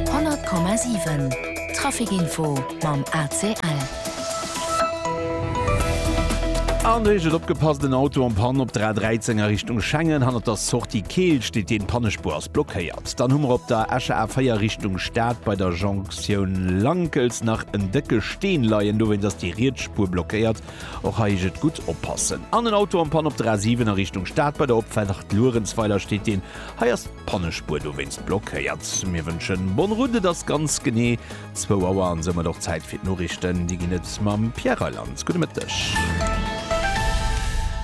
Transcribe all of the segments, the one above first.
100,7 Traficinfo mam ACL. An do heescht et, Opgepasst, en Auto en Panne op der A 13 a Richtung Schengen. Hannert der Sortie Keel steet een, d'Pannespur ass blockéiert. Dann hu mer op der Escher A 4 Richtung Stad bei der Jonktioun Lankels nach en décke Steen leien, dowéinst ass déi riets Spur blockéiert. Och hei heescht et, Gutt oppassen. An en Auto en Panne op der A 7 a Richtung Stad, bei der Opfaart Luerenzweiler steet een. Hei ass. Pannespuer dowéinst blockéiert. Mir wënschen bonne route, et ass ganz genee zwou Auer an soumat och Zäit fir d'Noriichten. Déi ginn et mam Pierre Reyland. Gudde Mëtteg.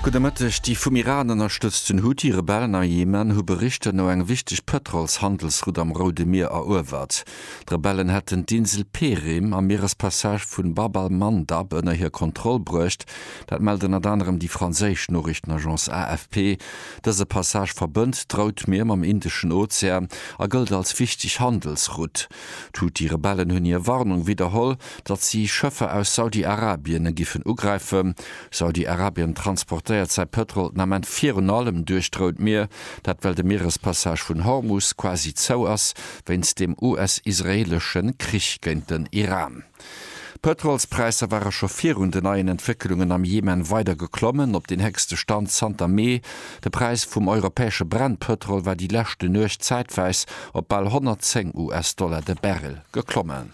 Gudde Mëtteg. Déi vum Iran ënnerstëtzten Houthi-Rebellen a Jemen hu Berichter no eng wichteg Pëtrols-Handelsroute am Roude Mier eruewert. D'Rebellen hätten d'Insel Perim am Mierespassage vu Bab al-Mandab ënner hir Kontroll bruecht. Dat mellt ënnert anerem déi franséisch Noriichtenagence AFP. Dëse Passage verbënnt d'Routmier mam Indeschen Ozean a gëllt als wichteg Handelsrutt. D'Huthi-Rebellen hunn hir Warnung widderholl, datt si Schëffer aus Saudi-Arabien giffen ugräifen. Saudi-Arabien transportéiert säi Pëtrol den Ament virun allem duerch d'Rout Mier, dat well de Mierespassage vun Hormus quasi zou ass wéinst dem US-israeelesche Krich géint den Iran. D'Pëtrolspräisser ware scho virun den neien Entwéckelungen am Jemen weider geklommen, op den héchste Stand zanter Mee. De Präis vum europäesche Brent-Pëtrol war déi leschte Nuecht zäitweis op bal 110 US-Dollar de Barrel geklommen.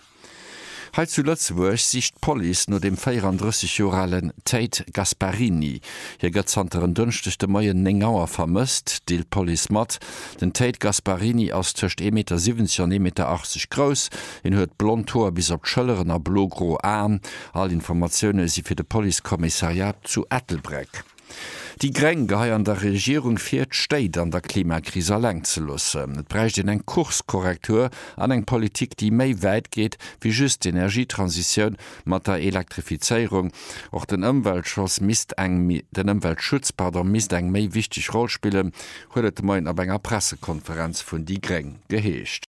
Hei zu Lëtzebuerg sicht d'Police no dem 34 Joer alen Tate Gasparini. Hie gëtt zanter en Dënschdeg de Moien 9 Auer vermësst, deelt d'Police mat. Den Tate Gasparini ass tëscht ee Meter 70 an ee Meter 80 grouss. Hien huet blond Hoer bis op d'Schëlleren a blo-gro Aen. All Informatioune si fir de Policekommissariat zu Ettelbréck. Déi Gréng geheie an der Regierung vir, d'Stéit an der Klimakris eleng ze loossen. Et bräicht een eng Kurskorrektur an eng Politik, déi méi wäit geet wéi just d'Energietransitioun mat der Elektrifizéierung. Och den Ëmweltschoss misst eng, den Ëmweltschutz, pardon, misst eng méi wichteg Roll spillen, huet et de Moien op enger Pressekonferenz vun déi Gréng geheescht.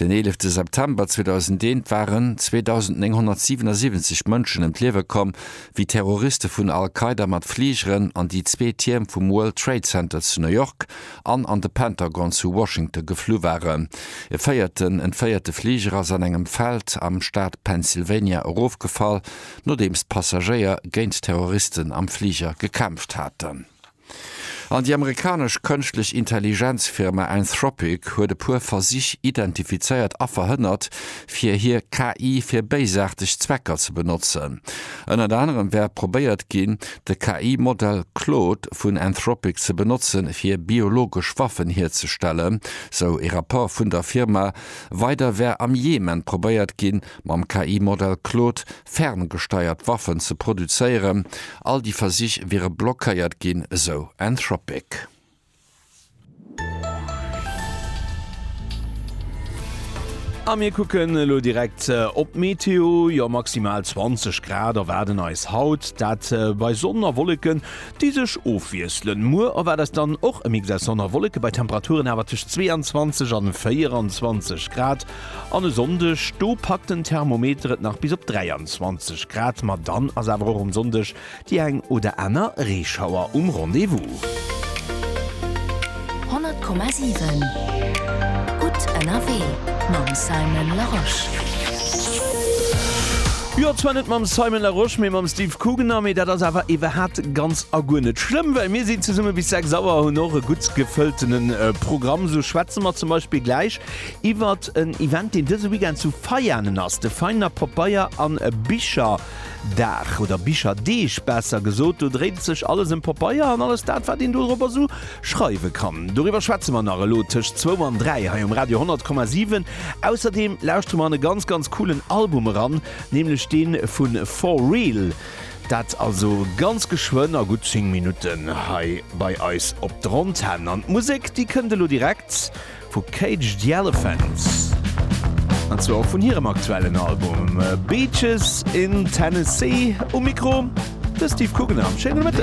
Den eelefte September 2001 waren 2.977 Mënschen ëm d'Liewe komm, wéi Terroriste vun Al-Qaida mat Fligeren an déi zwee Tierm vum World Trade Center zu New York an an de Pentagon zu Washington geflu waren. E véierten entféierte Fliger ass an engem Feld am Staat Pennsylvania erofgefall, nodeems d'Passagéier géint d'Terroristen am Fliger gekämpft haten. An déi amerikanesch Kënschtlech-Intelligenz-Firma Anthropic huet e puer Versich identifizéiert a verhënnert, fir hir KI fir béisaarteg Zwecker ze benotzen. Ënnert anerem wär probéiert ginn, de KI-Modell Claude vun Anthropic ze benotze fir biologesch Waffen hierzestellen, sou e Rapport vun der Firma. Weider wär am Jemen probéiert ginn, mam KI-Modell Claude ferngesteiert Waffen ze produzéieren. All déi Versich wiere blockéiert ginn, esou Anthropic. A mir kucken elo direkt op d'Meteo. Jo, maximal 20 Grad erwaarden eis haut, dat bei Sonn a Wolleken, déi sech ofwiesselen. Muer erwaart eis dann och e Mix aus Sonn a Wolleke bei Temperaturen awer tëscht 22 an 24 Grad. An e Sonndeg, do packt den Thermometer et nach bis op 23 Grad, ma dann ass awer och um Sonndeg déi eng oder aner Reeschauer um Rendez-vous. 100,7 gutt ënnerwee mam Simon Larosche. Jo, zwar net mam Simon Larosche, mee mam Steve Kugener, mee dat ass awer iwwerhat ganz a guer net schlëmm, well mir si zesumme bis 6 Auer a hunn och e gutt gefëltene Programm. Esou schwätze mer zum Beispill gläich Iwwert en Event, deen dëse Weekend zu Veianen ass, de Veiner Papeier an Bicherdag, oder Bicherdeeg besser gesot. Do dréit et sech alles ëm Papeier an alles dat, wat een dorobber esou schreiwe kann. Doriwwer schwätze mer nach elo tëscht zwou an dräi hei um Radio 100,7. Ausserdeem lauschtere mer an e ganz, ganz coolen Album eran, nämlech dee vu For Real. Dat also ganz geschwënn a gutt 10 Minutten hei bei eis op der Antenn. An d'Musek, déi kënnt elo direkt. Vu Cage the Elephant, an zwar och vun hirem aktuellen Album Beaches in Tennessee. Um Mikro de Steve Guggenheim. Schéine Mëtten.